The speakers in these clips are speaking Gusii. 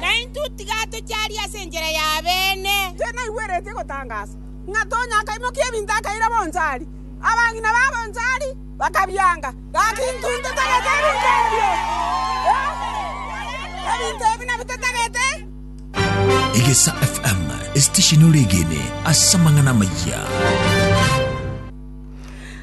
na intwe tiga tocharia ase enchera y'abeene. Intwe naigwereti egotangaasa, ng'a Tonya akaimokia ebinto akaira bonchari. Abang'ina ba bonchari bakabianga, gaki intwe intotagete ebinto ebio. Ebinto ebi nabio totagete. Egesa FM, esitesheni ore egene ase amang'ana amayia.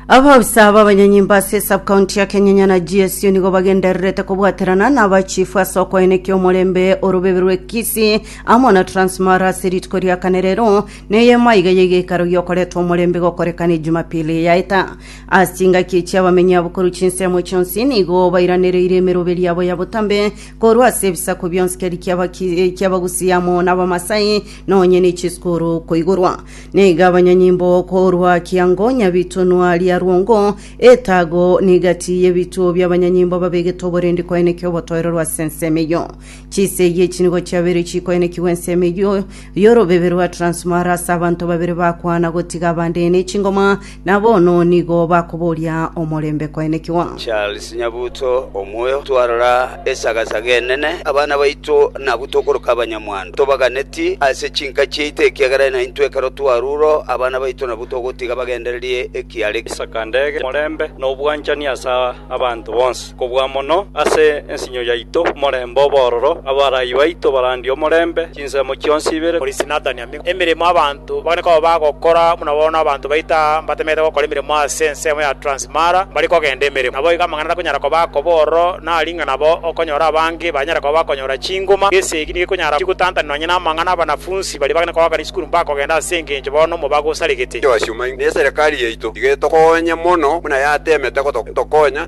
Abaofisa b'abanyanyimba ase esabkaunti ya Kenyanya na GSU nigo bagendererete kobwaterana na abachifu ase okoenekia omorembe orobebe rwe Kisii amo na Transmara ase rituko ria kane rero na eyemo iga ya egeikaro giokoretwa omorembe gokorekana Ejumapili yaeta. Ase chingaki echi abamenyi abo korwa chinsemo chionsi nigo bairanereire emeroberio yabo ya botambe korwa ase ebisaku bionsi keri ki'Abaki- ki'Abagusii amo na Abamasai nonye ne chisukuru koigorwa Nigo abanyanyimbo korwa kiango nyabitonwa ria rwongo etago negati y'ebituo bi'abanyanyimbo babegete oborendi koenekia obotoiroro ase ensemo eyio. Chisegi echi nigo chiabeire chikoenekigwa ensemo eyio y'orobebe rwa Transmara ase abanto babere bakwana gotiga abande nechingoma Na bono nigo bakoboria omorembe koenekigwa. Charles Nyabuto, omoyo, twarora esagasaga enene. Abana baito nabwo tokoroka abanyamwando. Tobaganeti ase chinka chiaito ekiagera naintwe ekero twaruro abana baito nabwo togotiga bagendererie ekiare. Isaka ndege, omorembe, na obwanchani ase abanto bonsi. Kobua mono ase ensinyo yaito, omorembe obe ororo. Abarai baito barandie omorembe chinsemo chionsi ibere. Polisi natania ime emeremo abanto mbakane koba bagokora buna bono abanto baito aa mbatemerete gokora emeremo ase ensemo ya Transmara mbari kogenda emeremo. Naboigo amang'ana takonyara koba akoba ororo nari ng'a nabo okonyora abange banyare koba bakonyora chinguma. Gese eki nigekonyara chigotantanwa nonya namang'ana abanafunsi baria bagane kogaaka risukuru mbakogenda ase engencho bono omobago osaregete. Joasi omaing'e, na eserekari yaito nigo etokoonye mono buna yateemete gotokonya.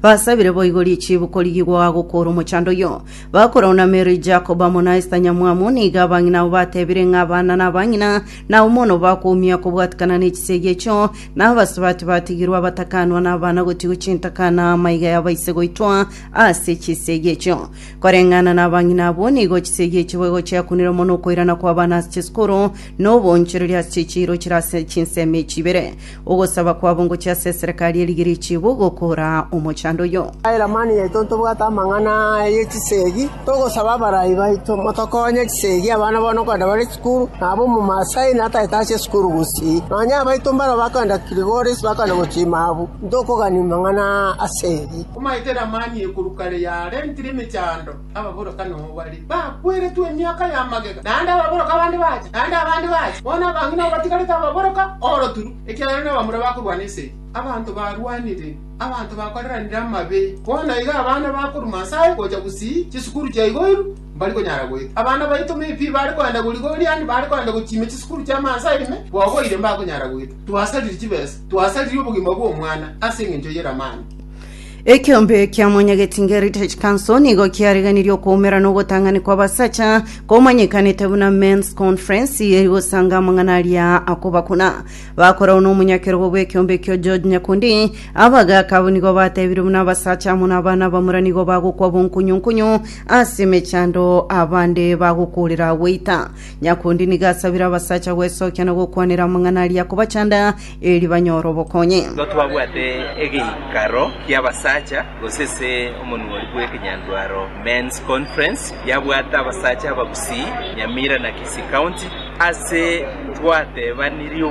Basabire boigo richibu korigigwa gokoora omochando oyio. Bakorauna Meri, Jakobo amo na Esta nyamwamu, nigo abang'ina abo batebire ng'a abana na abang'ina nao mono bakoumia kobwatikana ne chisegi echio, na abasubati batigirwe abatakanwa na abana gotigwe chintaka na amaiga ya baise goitwa ase chisegi echio. Koreng'ana na abang'ina abwo, nigo chisegi echio boigo chiakunire mono okoirana kw'abana ase chisukuru, na oboonchoreria ase chichiiro chire ase chinsemo echi ibere. Ogosaba kwabo ngochia ase eserekari ye Rigiriki bo gokora omochando oyo. Abairmani yaito ntobwate amang'ana aya ye chisegi, togosaba abarai baito motokonye chisegi abana bone okogenda bare chikuru, na aba omomaasai natagete ache esukuru gusii. Nonya abaito mbaro bakogenda Kilgoris bakogenda gochima abu, ntokogani mang'ana asegi. Omaete Lamani ekuru kare yarentire emechando. Ababorokani obo bare bakweretwe emiaka ya magega, naende ababorokani abande bache, naende abande bache. Bono abang'ina batigarete ababorokani oroturu, ekiagera nabamura bakorwana ense eye. Abanto barwanire, abanto bakoreranire amabe. Bono iga abana bakoruma Nyasae gocha gusii chisukuru chia igoiru, mbari konyara goeta. Abana baito me pi bare koenda goriga oriani, bare koenda gochiimia chisukuru chia mansa ime, bogoire mbakonyara goeta. Twasariri chibesa, twasariri obogima bw'omwana ase engencho y'eramani. Ekeombe kia Mwanyagetinga Heritage Council nigo kiariganirie okoumera na ogotang'ani kw'abasacha komanyekanete buna Men's Conference eri gosanga amang'ana aria akobakuna. Bakorao n'omonyakerogo bw'ekeombe ekio George Nyakundi abagaaka abwo nigo batebirie buna abasacha amo n'abana abamura nigo bagokwa bonkunyunkunyu ase emechando abande bagokoorera goita. Nyakundi nigo asabire abasacha gwesokia na gokwanera amang'ana aria akobachanda eri banyore obokonyi. Nigo twabwate egeikaro ki'abasacha, gose ase omonuori bw'ekenyandwaro Men's Conference, yabwate abasacha abagusii Nyamira na Kisii County, ase twateebanirie obobe.